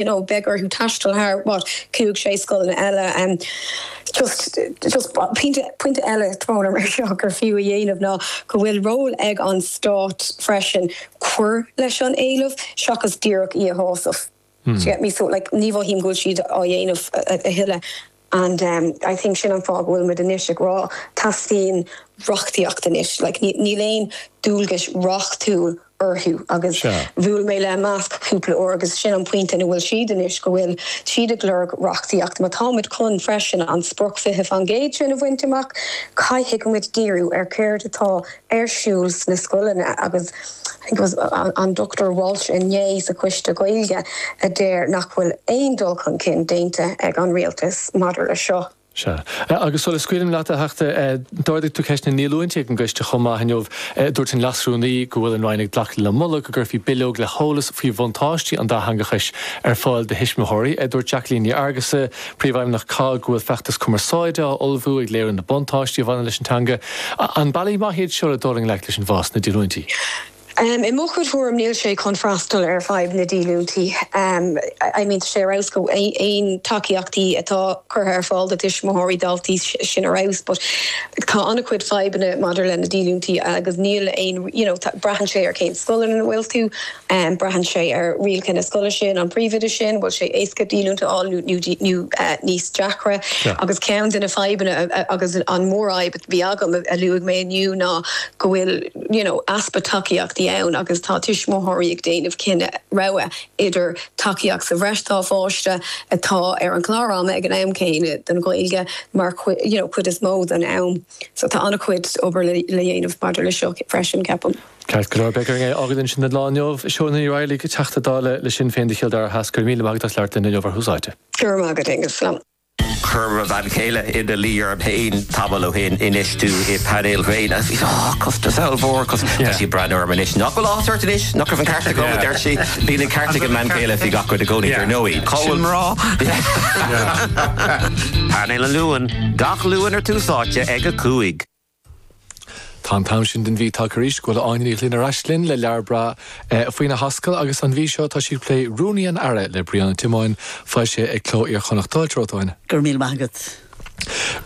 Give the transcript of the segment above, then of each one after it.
you know beidh orthu taisteal thar what cúig sé scoileanna eile and just just pointe pointe eile tromlach mar seo gur fiú a dhéanamh ná go bhfuil ról ag an stát freisin cur leis an éileamh seachas díreach é a shásamh do you get me so like ní mhothaím go bhfuil siad á dhéanamh a thuilleadh And I think sin an fáth go bhfuil muid anois ag rá, teastaíonn reachtaíocht anois. Like, níl aon dualgais reachtúil orthu agus bhuail mé le Imeasc cúpla uair agus sin an pointe ina bhfuil siad anois, go bhfuil siad ag lorg reachtaíocht. Má tá muid chun freisin an sprioc 20% sin a bhaint amach, caithfidh muid díriú ar céard atá ar siúl sna scoileanna agus an Dr Walsh inné sa choiste Gaeilge a deir nach bhfuil aon dul chun cinn déanta ag an Rialtas maidir leis seo. Sea. Agus sula scaoilim leat, a Theachta, d'ardaigh tú ceist na ndíolúintí ag an gcoiste chomh maith inniu. Dúirt an Leas-Rúnaí go bhfuil an Roinn ag glacadh le moladh go gcuirfí bileog le heolas faoi bhuntáistí an dátheangachais ar fáil do thuismitheoirí. Dúirt Jacqueline Ní Fhearghusa, Príomhfheidhmeannach COGG, go bhfuil feachtas cumarsáide á ullmhú ag léiriú na buntáistí a bhaineann leis an teanga. An bealaí maith iad seo le dul i ngleic leis an bhfás sna díolúintí? I mo chuid tuairim, níl sé chun freastal ar fadhb na díolúintí. I mean, tá sé ar fheabhas go aon tacaíochtaí atá curtha ar fáil do tuismitheoirí, daltaí, sin ar fheabhas but tá an-chuid fadhbanna maidir leis na díolúintí agus níl aon you know, braitheann sé ar cén scoil ina bhfuil tú. Braitheann sé ar rialacha na scoile sin, an príomhoide sin, bhfuil sé éasca díolúint a fháil nó níos deacra. Agus ceann de na fadhbanna agus an mhórfhadhb a bhí agam, a luaigh mé inniu, ná go bhfuil you know easpa tacaíochtaí ann agus tá tuismitheoirí ag déanamh cinneadh, rogha, idir tacaíocht sa bhreis dá bpáiste, atá ar an gclár ama ag an am céanna don Ghaeilge mar chuid, you know, chuid is mó den am. So tá an-chuid obair le dhéanamh maidir leis seo freisin, ceapaim. Ceart go leor, beidh orainn é a fhágáil ansin don lá inniu. Shónagh Ní Raghallaigh, Teachta Dála le Sinn Féin do Chill Dara Theas, go raibh míle maith agat as labhairt linn inniu ar Tús Áite. Go raibh maith agat, Aonghus. Chuir mo bhean chéile ina luí orm féin tamall ó shin infheistiú i bpainéil ghréine. Bhí sé costas ollmhór costas. Tá sí ag breathnú orm anois. Nach bhfuil áthas ort anois? Nach raibh an ceart agam, a deir sí. Bíonn an ceart ag an mbean chéile faoi gach rud i gcónaí, ar ndóigh. Cá bhfuil na mná? Painéal an Luain, gach Luan ar Tús Áite ag a Cúig. Tá an t-am sin den mhí tagtha arís. Go bhfuil Áine Ní Ghlinn ar ais linn le leabhar breá faoina hascaill agus an mhí seo tá sí ag plé Rúnaí an Aire le Brian Ó Tiomáin, foilsithe ag Cló Iar-Chonnacht. Fáilte romhat, a Áine. Go raibh míle maith agat.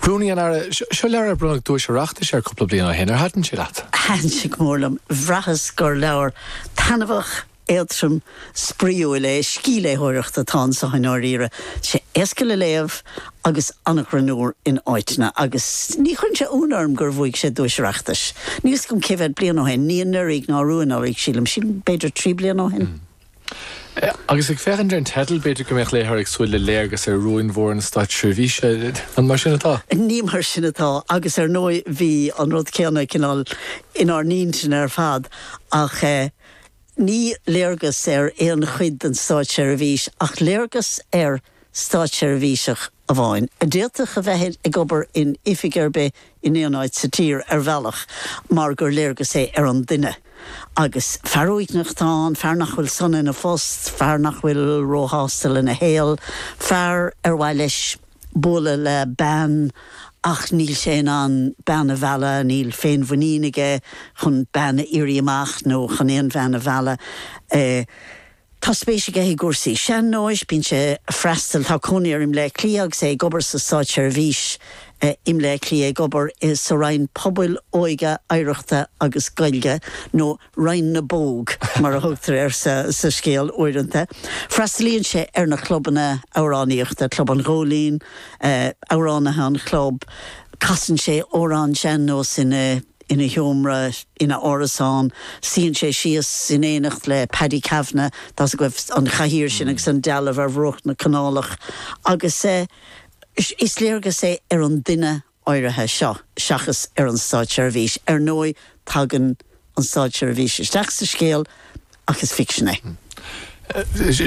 Rúnaí an Aire, seo leabhar ar bronnadh duais Oireachtais air cúpla bliain ó shin. Ar thaitin sé leat? Thaitin sé go mór liom. Bhraitheas gur leabhar taitneamhach, Éadrom spraíúil é, scíthléitheoireacht atá anso i ndáiríre. Tá sé éasca le léamh agus an-ghreannmhar in áiteanna, agus ní chuireann sé ionadh orm gur bhuaigh sé duais Oireachtais, níl 'fhios agam cé mhéad bliain ó shin, ní anuraidh ná arú anuraidh sílim, sílim b'fhéidir trí bliana ó shin. Agus ag féachaint ar an teideal, b'fhéidir go mbeadh léitheoir ag súil le léargas ar rúin mhóra na státseirbhíse, an mar sin atá? Ní mar sin atá, agus ar ndóigh bhí an rud céanna cineál inár n-intinn ar fad, ach eh. Ní léargas ar aon chuid den státseirbhís ach léargas ar státseirbhíseach amháin, a d'fhéadfadh a bheith ag obair in oifig ar bith in aon áit sa tír, ar bhealach, mar gur léargas é ar an duine. Agus fear uaigneach atá ann, fear nach bhfuil sona ina phost, fear nach bhfuil róshásta lena shaol, fear ar mhaith leis, bualadh le bean ach níl sé in ann bean a mhealladh, níl féinmhuinín aige chun bean a iarraidh amach nó chun aon bhean a mhealladh. Tá spéis aige i gcúrsaí sean-nóis, bíonn sé ag freastal, tá cónaí air i mBleá Cliath agus é ag obair sa Státseirbhís i mBleá Cliath, ag obair sa Roinn Pobail, Óige, Oidhreachta agus Gaeilge nó. Roinn na bPóg, mar a thugtar air sa scéal uaireanta. Freastalaíonn sé ar na clubanna amhránaíochta, Club an Ghóilín, Amhránaithe an Chlub, casann sé amhráin Sean Nós ina sheomra ina árasán, suíonn sé síos in éineacht le Paddy Kavanagh, tá's agaibh an chathaoir sin agus an dealbh ar bhruach na canálach, agus is léargas é ar an duine áirithe seo seachas ar an Státseirbhís. Ar ndóigh, tagann an Státseirbhís isteach sa scéal ach is ficsean é.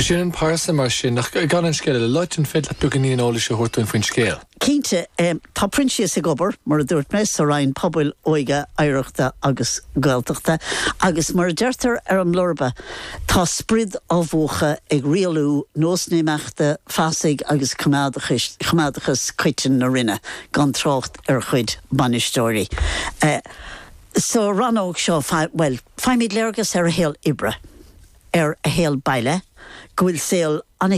Sin an phearsa, mar sin, ach gan an scéal a loit, an féidir leat beagáinín eolais a thabhairt dúinn faoin scéal? Cinnte. Tá Proinsias ag obair, mar a dúirt mé, sa Roinn Pobail, Óige, Oidhreachta agus Gaeltachta agus, mar a deirtear ar an mblurba, Tá a sprid á mhúchadh ag rialú nós imeachta fasaigh agus coimeádachas coiteann na Roinne, gan trácht ar a chuid bainisteoirí. Sa rannóg seo, bhuel, faighimid léargas ar a shaol oibre, ar a shaol baile, go bhfuil saol an.